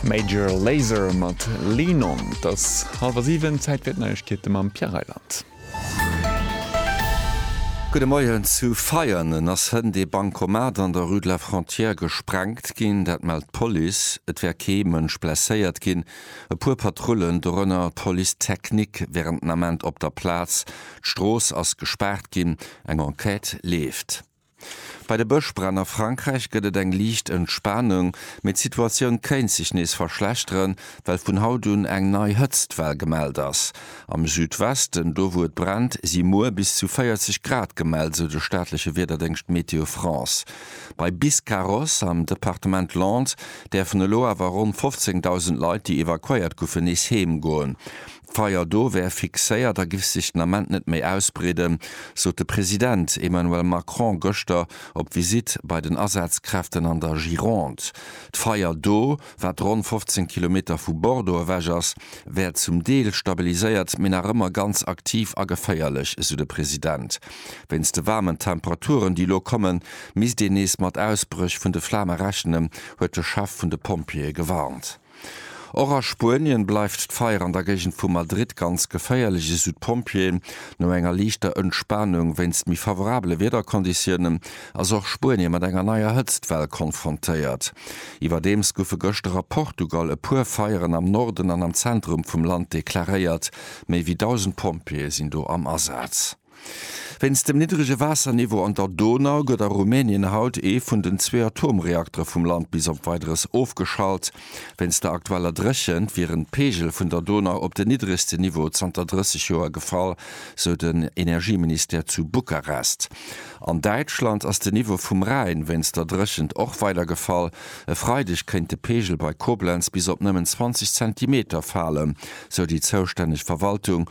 Major Lazer mat Lean On. Et ass hallwer 7, Zäit fir d'Neiegkeete mam Pierre Reyland. Gudde Moien, Zu Veianen ass hënt ee Bankomat an der Rue de la Frontière gesprengt ginn. Dat mellt d'Police. Et wär kee Mënsch blesséiert ginn. E puer Patrullen, dorënner d'Police technique, wären den Ament op der Plaz. D'Strooss ass gespaart ginn. Eng Enquête leeft. Bei de Bëschbränn a Frankräich gëtt et eng liicht Entspanung, mee d'Situatioun kéint sech nees verschlechteren, well vun haut un eng nei Hëtztwell gemellt ass. Am Südwesten, do wou et brennt, si muer bis zu 40 Grad gemellt, sou de staatleche Wiederdéngscht Météo France. Bei Biscarrosse am Departement Landes däerfen elo awer ronn 15.000 Leit, déi evakuéiert goufen, nees heem goen. D'Feier do wär fixéiert a giff sech den Ament net méi ausbreeden, sot de President Emmanuel Macron gëschter op Visitt bei den Asazkräften an der Gironde. D'Feier do, wat ronn 15 Kilometer vu Bordeaux ewech ass, wär zum Deel stabiliséiert, mee nach ëmmer ganz aktiv a geféierlech, esou de President. Wéinst de waarmen Temperaturen, déi elo kommen, misst een nees mat Ausbréch vun de Flame rechnen, huet de Chef vun de Pompjeeë gewarnt. Och a Spuenien bleift d'Feier an der Géigend vu Madrid ganz geféierlech, esou d'Pompjeeën. No enger liichter Entspanung wéinst méi favorabele Wiederkonditiounen, ass och Spuenien mat enger neier Hëtztwell konfrontéiert. Iwwerdeems goufe gëschter a Portugal e puer Feieren am Norden an am Zentrum vum Land deklaréiert. Méi wéi 1.000 Pompjeeë sinn do am Asaz. Wéinst dem niddrege Waasserniveau an der Donau gëtt a Rumänien haut ee vun den zwee Atomreaktere vum Land bis op Weideres ofgeschalt. Wéinst der aktueller Dréchent wieren d'Peegel vun der Donau op den niddregsten Niveau zanter 30 Joer gefall, sou den Energieministère zu Bukarest. An Däitschland ass den Niveau vum Rhäin wéinst der Dréchent och weider gefall. E Freideg kéint de Peegel bei Koblenz bis op nëmmen 20 Zentimeter falen, sou déi zoustänneg Verwaltung.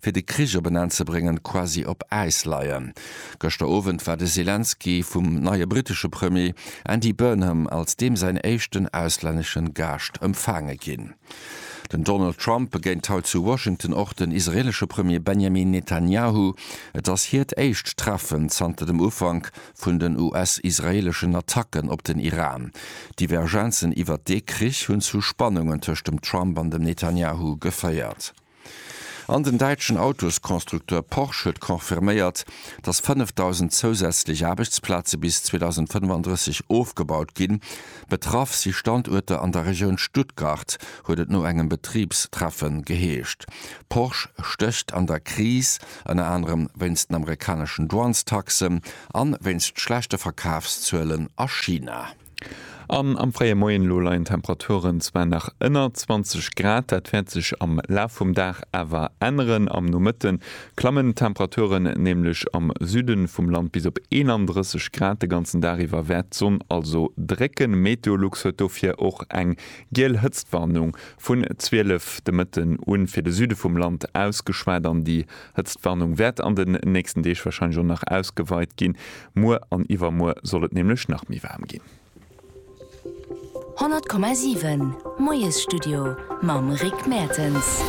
fir de Krich op en Enn ze bréngen, quasi op Äis leien. Gëschter Owend war de Selenskyj vum neie brittesche Premier Andy Burnham als deem säin éischten auslännesche Gaascht empfaange ginn. Den Donald Trump begéint haut zu Washington och den israeelesche Premier Benjamin Netanyahu. Et ass hiert éischt Treffen zanter dem Ufank vun den US-israeeleschen Attacken op den Iran. Divergenzen iwwert dee Krich hunn zu Spannungen tëscht dem Trump an dem Netanyahu geféiert. An den däitschen Autosconstructeur Porsche huet confirméiert, datt 5.000 zousätzlech Aarbechtsplaze bis 2035 ofgebaut ginn. Betraff si Standuerter an der Regioun Stuttgart, huet et no engem Betribstreffen geheescht. Porsche stécht an der Kris, ënner anerem wéinst den amerikaneschen Douanestaxen a wéinst schlechte Verkafszuelen a China. An am fréie Moien elo leien d'Temperaturen zwar nach ënner 20 Grad, dat wäert sech am Laf vum Dag awer änneren. Am Nomëtte klammen d'Temperaturen nämlech am Süde vum Land bis op 31 Grad. De ganzen Dag iwwer wäert d'Sonn also drécken. Meteolux huet dofir och eng giel Hëtztwarnung vun 12 de Mëtten u fir de Süde vum Land ausgeschwat an déi Hëtztwarnung wäert an den nächsten Deeg warscheinlech och nach ausgeweit ginn. Muer an iwwermuer soll et nämlech nach méi waarm ginn. 100,7 Moiesstudio mam Rick Mertens.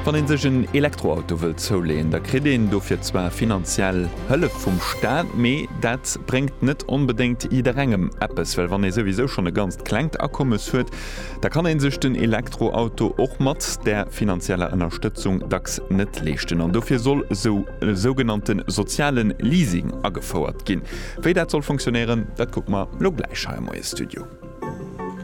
Wann een sech en Elektroauto wëllt zouleeën, da kritt een dofir zwar finanziell Hëllef vum Staat, mee dat bréngt net onbedéngt jidderengem eppes, well wann ee souwisou schonn e ganzt klengt Akommes huet, da kann een sech den Elektroauto och mat där finanzieller Ënnerstëtzung dacks net leeschten an dofir soll esou e sougenannte soziale Leasing agefouert ginn. Wéi dat soll funktionéieren, dat kucke mer elo gläich hei am Moiesstudio.